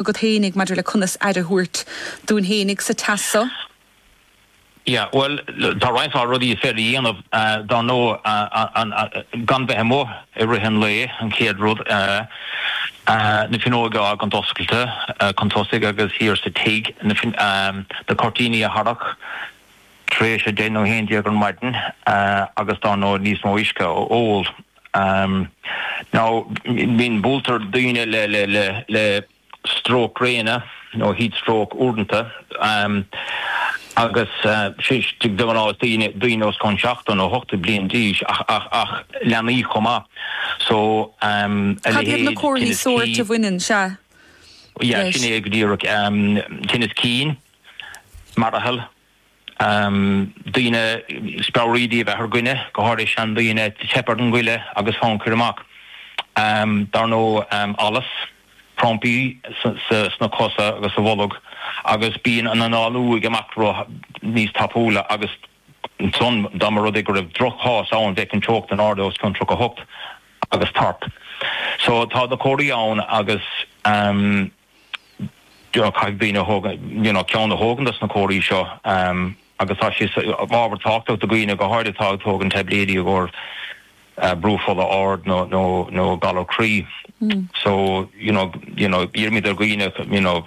agat fhéinig maidir le conas aire a thabhairt dúinn fhéinig sa teas so. Yeah, bhuel, tá roinnt mhaith rudaí is féidir a dhéanamh, dar ndóigh, gan bheith amuigh i rith an lae, an chéad rud, na fuinneoga a fhágaint oscailte chun tosaigh agus thiar sa tigh, na cuirtíní a tharrac tar éis a deich nó a haon déag ar maidin agus dar ndóigh níos mó uisce a ól. Um, now, bíonn, buailtear daoine le, le, le, le stróc gréine, nó heat stroke uaireanta, um, agus uh, de ghnáth daoine, daoine os cionn seachtó nó ochtó bliain d'aois, ach, ach, ach leanaí chomh maith. So, um, Cad iad na comharthaí sóirt a bhaineann leis? A leithéid tinneas cinn, yeah, sin é go díreach, um, tinneas cinn, mearbhall, daoine speabhraoidí a bheith ar dhuine, go háirithe seandaoine, teip ar an ngoile agus fonn cuir amach. Dar ndóigh, allas, crampaí sna cosa agus sa bholg agus bíonn an análú i bhfad níos tapúla agus ansan dá mba rud é go raibh droch-chás ann bheadh an teocht in airde os cionn 38 agus tart. So tá na comharthaí ann agus. caithfidh daoine a thóg, you know, ceann a thógaint as na comharthaí seo agus tá sé ábhairín tábhachtach do dhaoine go háirithe atá ag tógaint taibléidí i gcomhair brú fola ard nó galar croí. So, you know, you know, iarraimíd ar dhaoine, you know,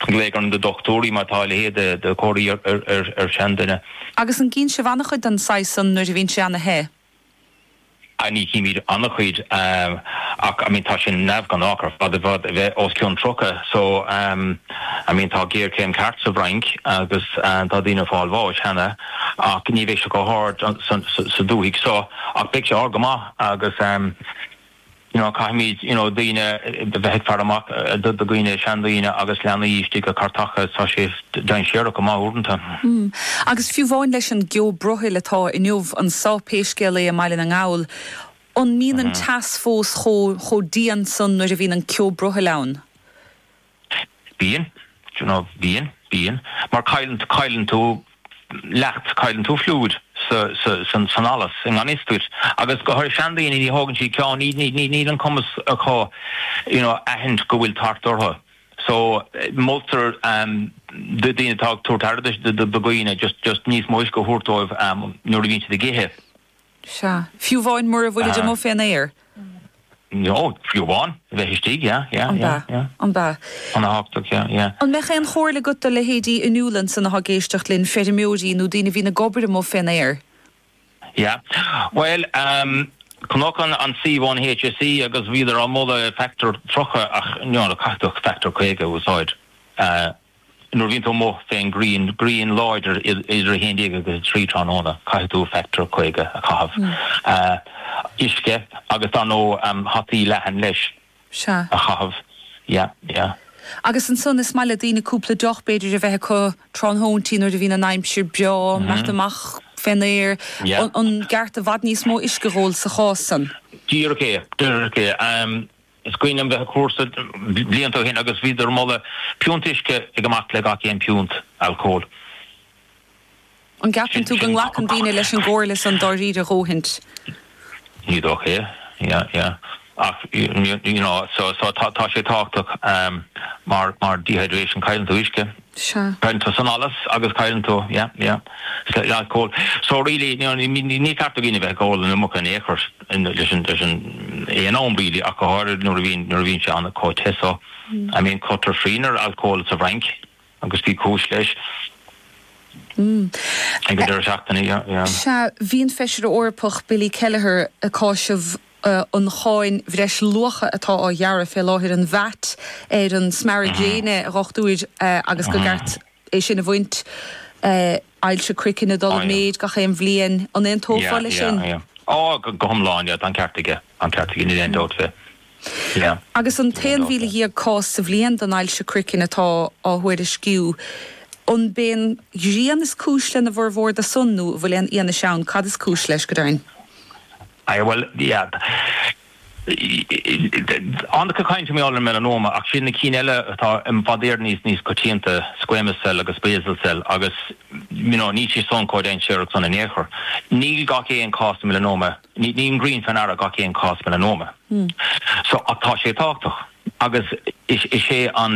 glaoch ar na dochtúirí má tá a leithéid de chomharthaí ar seanduine. Agus an gcíonn sibh an-chuid den saghas san nuair a bhíonn sé an-te? I mean chímíd an-chuid em ach I mean tá sin neamhghnách ar fad a bheith, a bheith os cionn 30 so em I mean tá géarchéim ceart sa bhFrainc agus em tá daoine ag fáil bháis cheana ach ní bheidh sé chomh hard san sa dúthaigh so ach beidh sé ard go maith agus em you know caithfimíd you know daoine a bheith ag faire amach do dhaoine, seandaoine agus leanaí istigh i gcairteacha, tá sé dainséarach go maith uaireanta. Agus fiú amháin leis an gceo brothaill atá inniu annso pé scéal é i mBaile na nGall, an mbíonn an teas fós chomh dian san nuair a bhíonn an ceo brothaill ann? Bíonn, d'you know, bíonn, bíonn, mar cailleann, cailleann tú leacht, cailleann tú fluid sa, sa, san, san allas i ngan fhios duit agus go háirithe seandaoine ní thógann siad ceann, ní, ní, ní, níl an cumas acu you know aithint go bhfuil tart orthu so moltar ehm do dhaoine atá ag tabhairt aire do, do, do dhaoine just, just níos mó uisce a thabhairt dóibh ehm nuair a bhíonn siad ag ithe. Sea. Fiú amháin mura bhfuilid amuigh fén aer? Ó, fiú amháin. A bheith istigh, yeah, yeah, yeah, yeah. An b'ea, an b'ea. Ana-thábhachtach, yeah, yeah. An mbeadh aon chomhairle agat do leithéidí inniu ansan atá ag éisteacht linn, feirmeoirí nó daoine a bhíonn ag obair amuigh fén aer? Yeah. Bhuel, ehm, chonacsa an suíomh ón HSE agus bhíodar ag moladh factor 30 ach, you know, caithfidh tú factor 50 a úsáid. Eh. nuair a bhíonn tú amuigh fén ngrian, grian láidir idir 11 agus 3 tráthnóna, caithfidh tú factor 50 a chaitheamh. uisce agus dar ndóigh hataí leathan leis. Sea. a chaitheamh. Ya, ya. Agus ansan is maith le daoine cúpla deoch b'fhéidir a bheith acu tráthnóintí nuair a bhíonn an aimsir breá, imeacht amach fén aer, an gceart i bhfad níos mó uisce a dh'ól sa chás san. Díreach é, díreach é. Is cuimhin liom bheith ag cúrsa blianta ó shin agus bhíodar ag moladh piúnt uisce ag imeacht le gach aon piúnt alcóil. An gceapann tú go nglacann daoine leis an gcomhairle san dáiríre a dhóthaint? Ní dócha é. Yeah, yeah. Ach, you know, so tá sé tábhachtach mar dehydration, cailleann tú uisce. Sea. Cailleann tú san allas agus cailleann tú, yeah, yeah, slightly alcól. So really, you know, ní, ní, ní ceart do dhaoine a bheith ag ól an iomarca in aon chor in, leis an, leis an, aon am really ach go háirid nuair a bhíonn, nuair a bhíonn sé ana chomh te so. I mean chuireadar srian ar alcól sa bhFrainc agus bhí cúis leis. Ag an deireadh seachtaine, yeah, yeah. Sea, bhí an Feisire Eorpach Billy Kelleher ag cásamh ii, an cháin bhreis-luacha atá á ghearradh fé láthair, an VAT, ar an smearadh gréine, a dhochtúir, agus go gceart é sin a bhaint, ii, ailse croiceann ag dul i méid gach aon bhliain. An aontófá leis sin? Ó, go hiomlán, tá an ceart aige, tá an ceart aige, níl aon dabht fé. Agus an t-aon mhíle dhéag cás sa bhliain den ailse croiceann atá á thuairisciú, an b'é an ghrian is cúis lena bhfurmhór do san nó an bhfuil aon fhianaise ann cad is cúis leis, go deimhin? Eh, bhuel, yeah. Ag caint mar gheall ar melanoma, ach sin na cinn eile atá i bhfad Éireann níos, níos coitianta, squamous cell agus basal cell agus, you know, níl siad san chomh dainséarach san in aon chor. Níl gach aon cás melanoma, níl an ghrian fé ndeara gach aon cás melanoma. So, ach tá sé tábhachtach agus is é an.